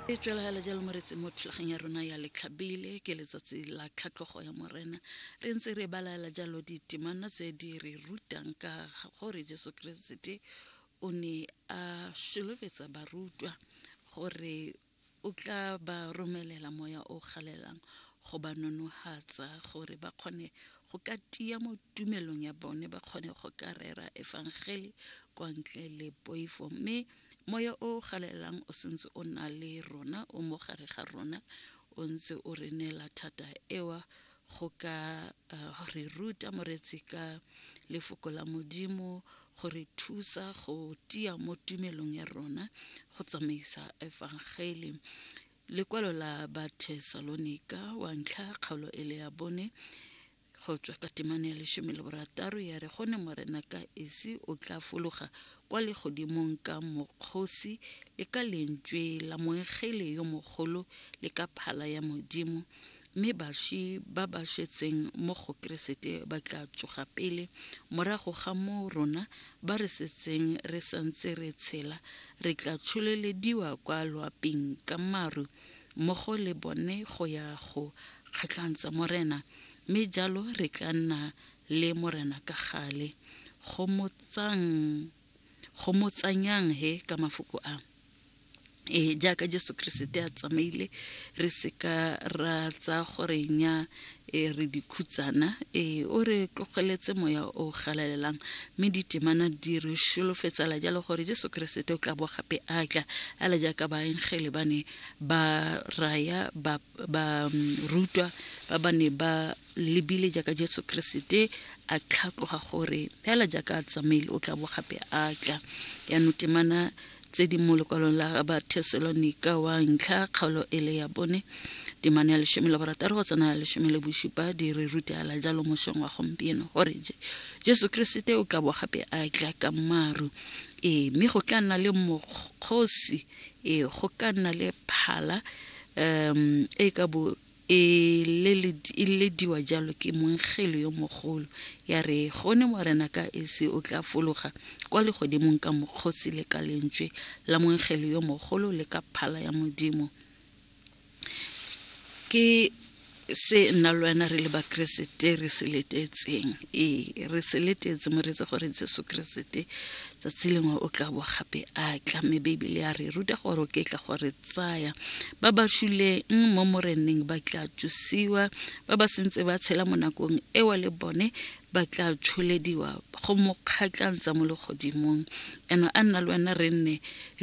e tswelagala jalo mo retseng mo thulaganya rona ya letlhabele ke letsatsi la tlhatlhogo ya morena re ntse re balaela jalo ditemana tse di re rutang ka gore jesu keresete o ne a solofetsa barutwa gore o tla ba romelela moya o galelang go ba nonohatsa gore ba kgone go ka tia mo tumelong ya bone ba kgone go ka rera efangele kwa ntle le poifo mme moya o galelang o sentse o na le rona o mo gare ga rona o ntse o re neela thata ewa go ka uh, re ruta moretsi ka lefoko la modimo go re thusa go tia mo tumelong ya rona go tsamaisa efangeli lekwalo la bathesalonika wa ntlha kgaolo e le ya bone go tswa ka temane ya lesome le borataro ya re gone morena ka esi o tla fologa kwa legodimong ka mokgosi le ka lentswe la moengele yo mogolo le ka phala ya modimo mme baswi ba ba swetseng mo go keresete ba tla tsoga pele morago ga moo rona ba re setseng re santse re tshela re tla tsholelediwa kwa loaping ka maru mmogo le bone go ya go kgatlhantsa morena mme jalo re tla nna le Morena ka gale. Gomotsang, gomotsanyang he ka mafoko a e jaaka Jesu Keresete a tsamaile re seka ra tsa gore nya e re dikhutsana e o re tlogeletse moya o galalelang mme ditemana di re sholofetsala jalo gore Jesu Keresete o tla bo gape a tla a le jaaka baengele ba ne ba raya ba barutwa ba ba ne ba lebile jaaka jesu keresete a tlhatloga gore fela jaaka a tsamaile o tla bo gape a tla yaanong temana tse di mo lekwalong la ba thesalonika wa ntlha kgaolo e le ya bone temane ya lesome le borataro go tsena ya lesome le bosupa di re rutela jalo mosong wa gompieno gore je jesu keresete o tla bo gape a tla ka maru ee mme go tla nna le mokgosi Ee, go ka nna le phala um e ka bo e leledi- e lediwa jalo ke mongelo yo mogolo ya re gone morena ka esi o tla fologa kwa legodimong ka mokgosi le ka lentswe la mongelo yo mogolo le ka phala ya modimo ke se nna le wena re le bakeresete re se letetseng ee re se letetse moreetsa gore jesu keresete tsatsi lengwe o tla bo gape a tla mme beibele ya re ruta gore o ke tla gore tsaya ba ba shuleng mo moreneng ba tla tsusiwa ba ba sentse ba tshela mo nakong ewa le bone ba tla tsholediwa go mo kgatlantsa mo legodimong eno a nna le wena re nne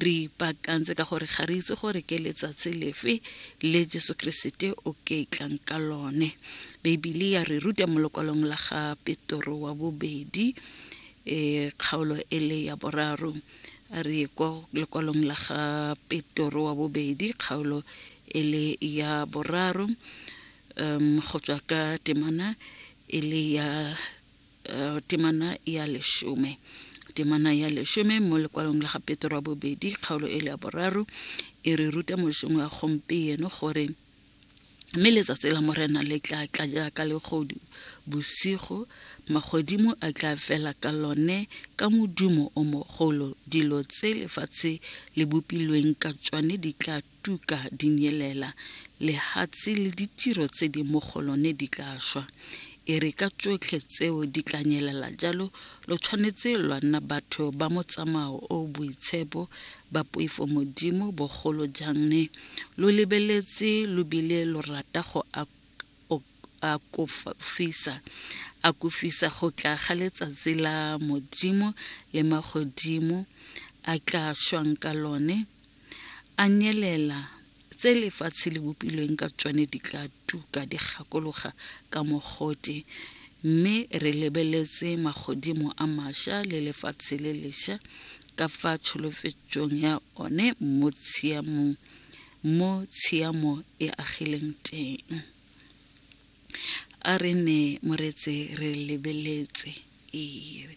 re ipaakantse ka gore ga re itse gore ke letsatsi lefe le jesu keresete o ke tlang ka lone beibele ya re ruta mo lokwalong la ga petoro wa bobedi um kgaolo e le ya boraro a re kwa lokwalong la ga petoro wa bobedi kgaolo e le ya boraro um, go tswa ka temana e le ya uh, temana ya leshome temana ya leshome mo lekwalong la ga petro wa bobedi kgaolo e le ya boraro e re ruta mosong wa gompieno gore mme letsatsi la morena le tla tla jaaka legodu bosigo magodimo a tla fela ka lone ka modumo o mogolo dilo tse lefatshe le bopilweng ka tsone di tla tuka di nyelela, lehatshe le ditiro tse di mo go lone di tla shwa. E re ka tsotlhe tseo di tla nyelela jalo, lo tshwanetse lwa nna batho ba motsamao o boitshepo, ba poifo Modimo, bogolo jang ne lo lebeletse lo bile lo rata go akofisa akofisa go tla ga letsatsi la Modimo le magodimo a tla shwang ka lone. A nyelela, tse lefatshe le bopilweng ka tsone di tla tuka di gakologa ka mogote, mme re lebeletse magodimo a masha le lefatshe le lesha ka fa tsholofetsong ya one mo tshiamong mo tshiamo e agileng teng. a re ne moretse re lebeletse ee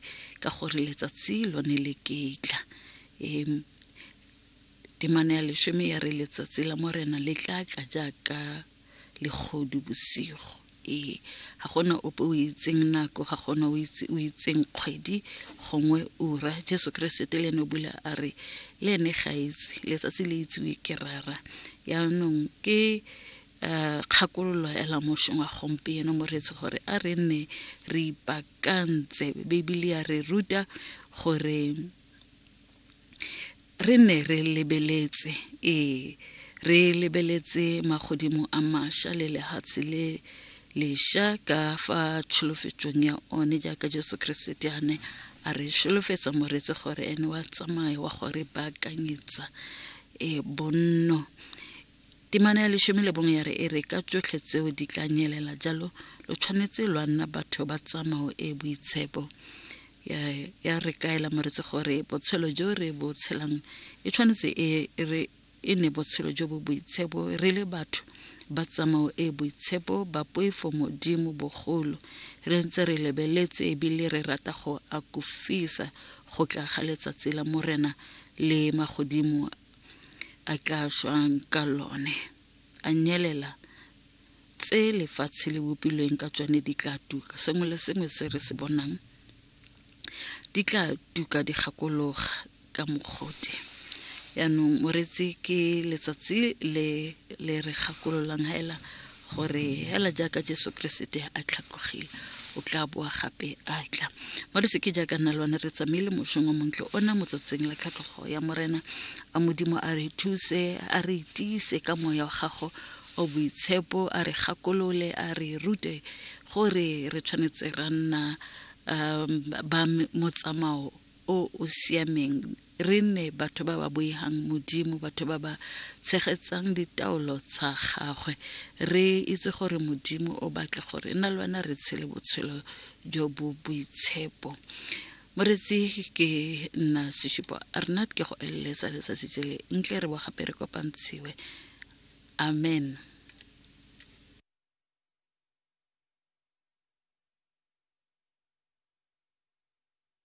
ka gore letsatsi lone le ketla um temane ya lesome ya re letsatsi la morena le tla tla jaaka legodu bosigo ee ga gona ope o itseng nako ga gona o itseng kgwedi gongwe ura jesu keresete le ene o bula a re le ene ga itse letsatsi le itsiwe ke rara yaanong ke um kgakololo ya lamošong wa gompieno moreetsi gore a re nne re ipakantse bibele ya re ruta gore re ne re lebeletse ee re lebeletse magodimo a maša le lehatshe le leša ka fa tšholofetšong ya one jaaka jesu keresete a ne a re šolofetsa moretse gore ene wa tsamaya wa gore baakanyetsa e bonno Temana ya lesome le bongwe ya re e re ka tsotlhe tseo di tla nyelela jalo lo tshwanetse lwa nna batho ba tsamao e boitshepo ya re kaela moretsi gore botshelo jo re bo tshelang e tshwanetse e re e ne botshelo jo bo boitshepo re le batho ba tsamao e boitshepo ba poifo modimo bogolo re ntse re lebeletse ebile re rata go akofisa go tla ga letsatsi la morena le magodimo a tla swang ka lone a nyelela tse lefatshe le bopilweng ka tsone di tla tuka sengwe le sengwe se re se bonang di tla tuka di gakologa ka mokgote yaanong moretsi ke letsatsi le le re gakololang hela gore hela jaaka jesu keresete a tlhatlogile o tla boa gape a tla mo re seke jaaka nna le one re tsamaile mošong o montle ona motsatsing la tlhatlhogo ya morena a modimo a re thuse a re tiise ka moya wa gago o boitshepo a re gakolole a re rute gore re tshwanetse ra nna um, ba motsamao o o siameng Re nne batho ba ba boihang Modimo, batho ba ba tshegetsang ditaolo tsa gagwe. Re itse gore Modimo o batla gore nna le wena re tshele botshelo jo bo boitshepo. Moretsi ke nna Seshupo Arnat ke go eleletsa letsatsi jele ntle re bo gape re kopantshiwe. Amen.